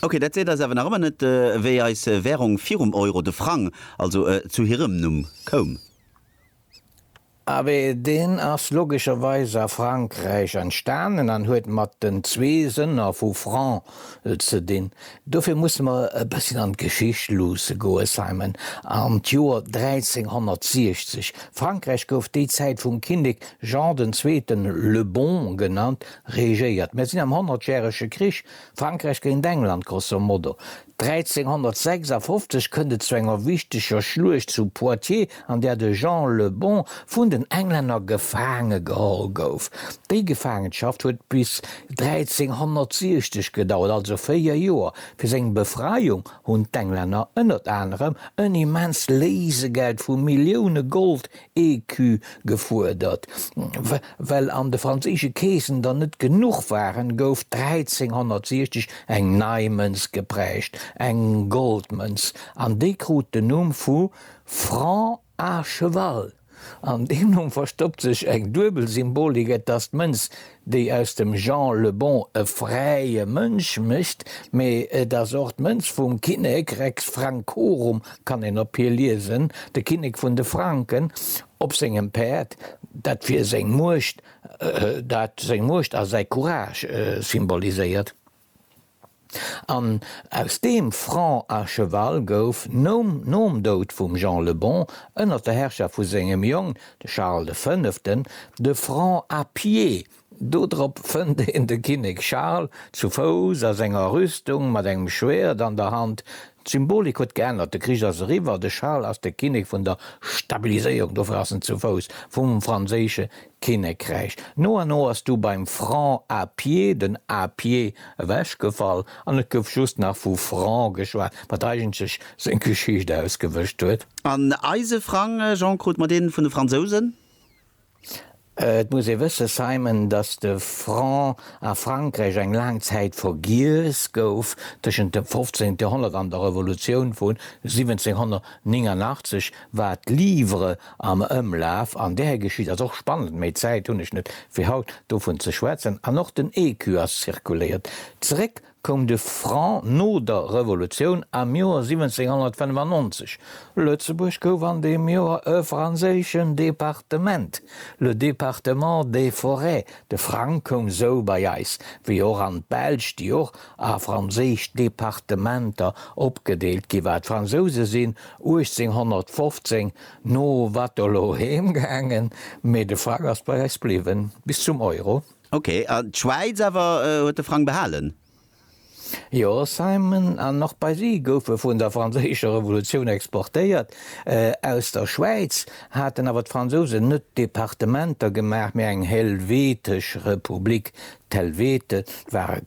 Ok, dat seet eis awer nach ëmmer net, wéi eis Währung virum Euro, de Frang also, zu hirem Numm koum. Abee, deen ass logescherweis a Frankräich entstanen an huet mat den zwee Sënner vu Franc ze dinn. Dofir musse mer e bësschen an d'Geschicht luusse goe, Simon, an d'Joer 1360. Frankräich gouf déi Zäit vum Kinnek Jean den Zweeten, Le Bon genannt, regéiert. Mer sinn am Honnertjärege Krich. Frankräich géint England, grosso modo. 1356 kënnt et zu enger wichteger Schluecht zu Poitiers, an där de Jean le Bon vun den Englänner gefaange geholl gouf. Déi Gefaangenschaft huet bis 1360 gedauert, also véier Joer. Fir seng Befreiung hunn d'Englänner ënnert anerem en immenst Léisegeld vu Millioune Gold Écu gefuerdert. Well an de franséische Keesen der net genuch waren, gouf 1360 eng nei Mënz geprägt, eng Goldmënz, an déi krut den Numm vu Franc à cheval. An deem Numm verstoppt sech eng duebel Symbolik, et ass d'Mënz déi aus dem Jean le Bon e fräie Mënsch mécht, mee et ass och d'Mënz vum Kinnek, Rex Francorum kann een op hir liesen, de Kinnek vun de Franken, op sengem Päerd, dat fir seng Muecht, dat seng Muecht a säi Courage symboliséiert. An aus deem Franc à cheval gouf nom Doud vum Jean le Bon ënner der Herrschaft vu sengem Jong, de Charles de Fënneften, de Franc à pied. Dodrop fënnt een de Kinnek Charles zu Fouss a senger Rüstung mat engem Schwäert an der Hand. D'Symbolik huet geännert, de Krich ass eriwwer, de Charles ass de Kinnek vun der Stabiliséierung, dofir ass en zu Fouss vum franséische Kinnekräich. No a no ass du beim Franc à pied den à pied ewechgefall an et gouf just nach vu Franc geschwat, wat eigentlech seng Geschicht ausgewëscht huet. An eise Frang, Jean, krut mer dee vun de Fransousen? Et muss ee wëssen, Simon, datt de Franc a Frankräich eng laang Zäit vergiess gouf, tëschent dem 15. Joerhonnert an der Revolutioun vu 1789. Wat d'Livre am Ëmlaf an där geschitt, ass och spannend, méi Zäit hunn ech net, fir haut dovun ze schwätzen. An och den Écu ass zirkuléiert. Zeréck koum de Franc no der Revolutioun am Joer 1795. Lëtzebuerg gouf an deem Joer e franséischen Departement, le département des Forêts. De Frang koum sou bei eis, wéi och an d'Belsch, déi och a franséisch Departementer opgedeelt ginn, war d'Fransouse sinn 1815 no Waterloo heem gaangen, mee de Frang ass bei eis bliwwen, bis zum Euro. Ok, a d'Schwäiz awer huet de Frang behalen? Jo, Simon, an och bei si goufe vun der franséischer Revolutioun exportéiert. Aus der Schwäiz haten awer d'Fransousen net Departementer gemaach, mee eng helvetesch Republik, d'Helvete, d'ware